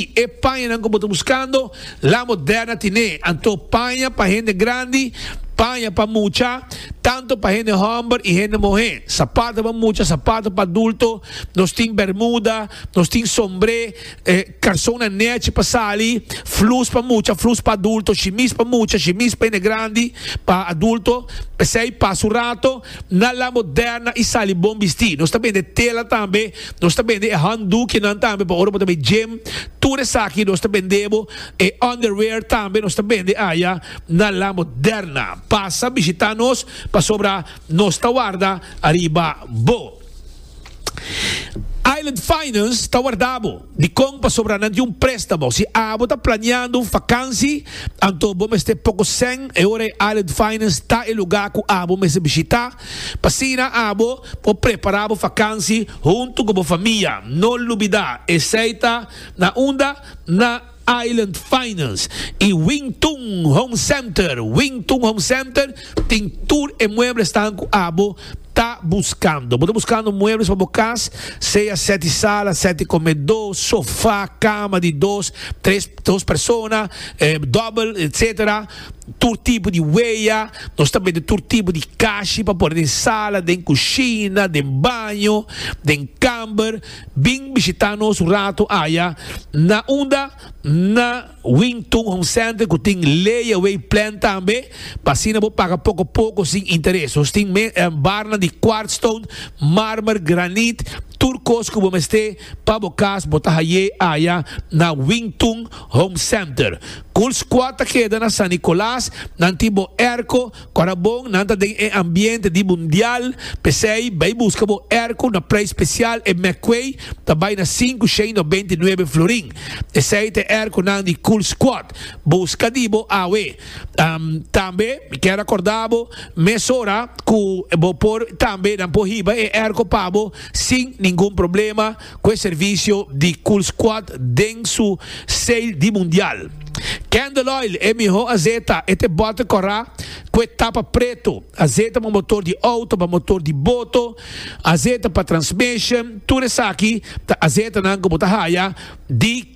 I e pañanan ku bo ta buskando, la bo dèrna tine. Anto paña pa hende grandi, paña pa mucha, tantu pa hende hòmber i hende muhé, sapatu pa mucha, sapatu pa adulto, nos tin bèrmuda, nos tin sombré, karsonnan nèchi pa sali, flus pa mucha, flus pa adulto, shimis pa mucha, shimis pa hende grandi, pa adulto, p'esei pasa un rato. Na La Moderna i sali bon bistí. Nos ta bende tela tambe. Nos ta bende e handdoekjenan tambe pa ora bo ta bay gym. Tur esaki nos ta bende bo. E underwear tambe nos ta bende aya na La Moderna. Pasa bishita nos pasobra nos ta warda ariba bo. Island Finance ta warda bo di kon pasobra nan tin un préstamo. Si abo ta planeando un fakansi, anto bo mester poko sèn. E ora ei Island Finance ta e lugá ku abo mester bishitá. P'asina abo por prepará bo fakansi huntu ku bo famia. No lubidá, esei ta na unda na. Island Finance y Wing Tun Home Center, Wing Tun Home Center tin tur e muebles tan cu abo ta buscando. Bo ta buscando muebles pa bo cas, sea sete sala, sete comedo, sofa, cama di dos, tres, dos persona, double, etc. Tur tipo di wea, nos ta bende tur tipo di cashi pa pone den sala, den cushina, den baño, den camber. Bin bishitá nos un ratu aya na unda na Wing Tun Home Center ku tin layaway plan tambe pa asina bo paga poko poko sin interes. Nos tin barnan di quartz stone, marmer, granit, tur kos ku bo mester pa bo kas bo ta hay'é aya na Wing Tun Home Center. Cool Squad ta keda na San Nicolas, nan tin bo airco, Ora bon nan ta den e ambiente di mundial, p'esei bai buska bo erko na prei spesial e McQuay ta bai na sinku shei no beinti nuebe florin. Esei ta e erkonan di Cool Squad. Buska di bo awe. Tambe mi kier akorda bo mesora ku bo por tambe nan por hiba e erko pa bo sin ningun problema. cu e servicio di Cool Squad den su sale di Mundial. Candle Oil e miho azeta, e ta e bote cora cu e tapa preto, azeta pa motor di auto, pa motor di boto, azeta pa transmission, tur esaki ta azetanan cu bo ta haya di.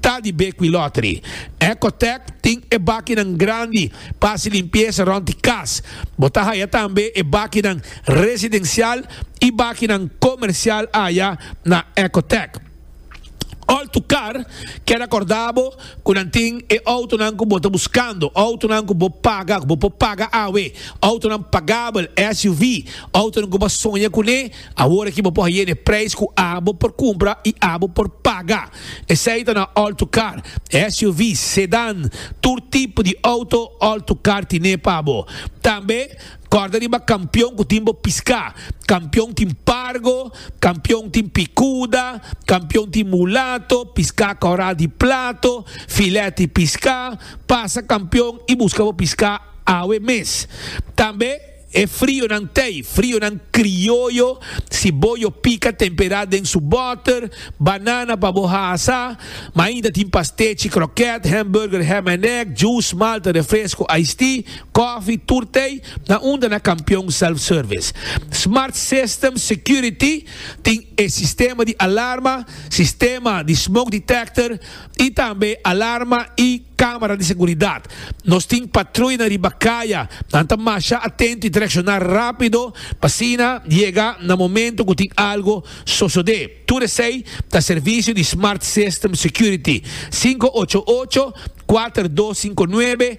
Ta di Bequi Lottery. Ecotec tin e bakinan grandi pa hasi limpiesa rond di kas. Bo ta haya tambe e bakinan residencial y bakinan comercial aya na Ecotec. All to car keda corda bo cu nan tin e autonan cu bo ta buscando, autonan cu bo paga, cu bo por paga awe, autonan pagabel, SUV, autonan cu bo a soña cune. Awor aki bo por haye n'e prijs cu abo por cumpra y abo por paga. Esey ta na all-to-car, SUV's, sedan, tur tipo di auto all-to-car tine pa bo. Tambe corda riba Campeon cu tin bo pisca. Campeon tin Pargo, Campeon tin Picuda, Campeon tin Mulato, pisca coral di plato, filet di pisca. Pasa Campeon y busca bo pisca awe mes. Tambe. E frionan tei, frionan krioyo, si bo yo pika tempera den su boter, banana pa bo hasa, ma ainda tin pastechi, kroket, hamburger, ham en egg, juice, malta, refresco, iced tea, kofi, tur tei, na unda na Kampion Self Service. Smart System Security tin e sistema di alarma, sistema di smoke detector, y tambe alarma y camera di seguridad. Nos tin patruya na riba caya, nan ta masha atento y ta reacciona rapido pa asina yega na momento cu tin algo sosode. Tur esey ta servicio di Smart System Security, sinku ocho ocho, kuater dos sinku nuebe,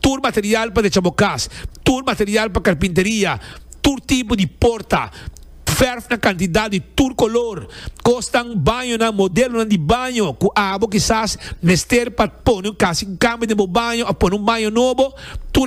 tur material pa decha bo kas, tur material pa karpinteria, tur tipo di porta, fèrf na kantidat di tur kolor, kosnan, bañonan, modelonan di baño ku abo kisas mester pa pone un kasi kamber den bo baño òf pone un baño nobo, tur.